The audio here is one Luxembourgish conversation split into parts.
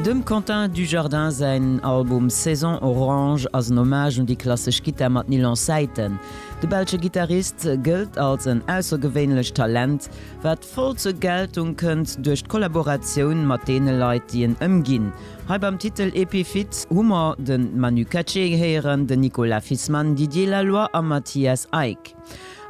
Dem Quentin Dujardin säin Album Saison Orange ass en Hommage un déi klassesch Gittar mat Nylon Saiten. De belsche Gittarist gëllt als en aussergewéinlecht Talent, wat voll zur Geltung kënnt duerch d'Kollaboratioun mat deene Leit, déi en ëmginn. Hei beim Titel Epiphyt hu mer de Manu Katché héieren, den Nicolas Fisman, Didier Laloy a Matthias Eick.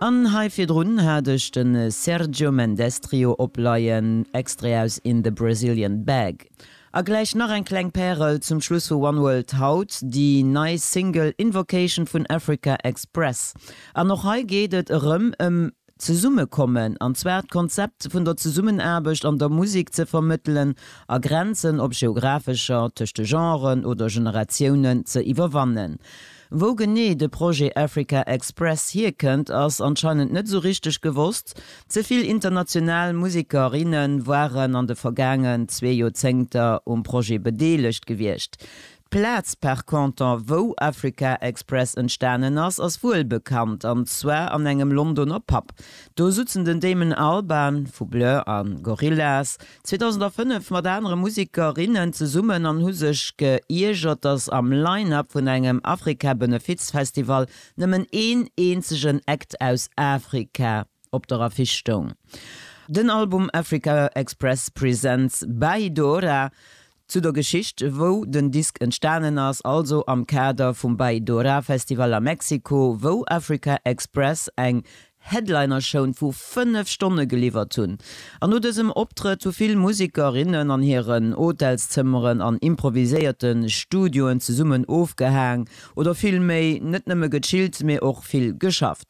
An hei virdrun hat ech de Sergio Mendes Trio opleien, Extrait aus In the Brazilian Bag. A gläich nach eng kleng Pärel zum Schluss vu One World haut, déi nei Single Invocation vun Africa Express. An och hei geet et erëm ëm Zesummekommen, an zwar d'Konzept vun der Zesummenaarbecht an der Musek ze vermëttelen a Grenzen, ob geographescher, tëscht de Genren oder Generatiounen, ze iwwerwannen. Wou genee de Projet Africa Express hierkënnt, ass anscheinend net esou richteg gewosst. Ze vill international Museker, inne waren an de vergaangen zwee Joerzéngter um Projet bedeelegt gewiescht. D'Plaz par contre, wou Africa Express entstanen ass, ass wuel bekannt, an zwar an engem Londoner Pub. Do sutzen den Damon Albarn vu Blur a Gorillaz, 2005 mat anere Musikerinnen zesummen an hu sech geiergert, dass am Line-Up vun engem Afrika-Benefizfestival nëmmen een eenzegen Act aus Afrika op der Affiche stoung, den Album Africa Express Presents By Dora. Zu der Geschicht wou den Disk entstanen ass, also am Kader vum Bay Dora Festival a Mexiko, wou Africa Express eng Headlinershown vu 5 Stonne geliwwert hunn. An no dësem Optrëtt hu vill Musiker, innen an hiren Hotelszëmmeren an improviséierte Studioen zesummen ofgehaang oder vill méi net nëmme gechillt, mee och vill geschafft.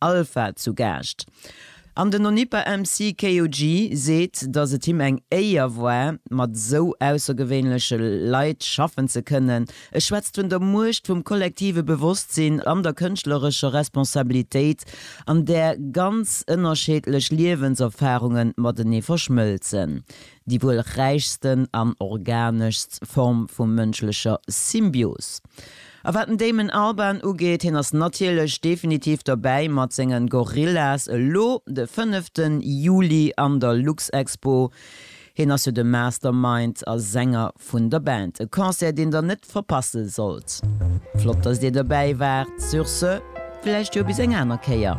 Alpha zu Gaascht an den Onipa MC KOG seet, dass et him eng Éier war, mat esou aussergewéinleche Leit schaffen ze kënnen. E schwätzt vun der Muecht vum kollektive Bewosstsinn an der kënschtlerescher Responsabilitéit, an där ganz ënnerscheedlech Liewenserfarunge matenee verschmëlzen. déi wuel räichsten an organeschst Form vu mënschlecher Symbios. A wat den Damon Albarn ugeet, hien ass natierlech definitiv dobäi mat sengen Gorillaz, elo de fënneften Juli an der Luxexpo. Hien ass jo de Mastermind a Sänger vun der Band. E Concert deen der net verpasse sollt. Flott dass dir dobäi waart. Sur ce, vläicht jo bis eng aner Kéier.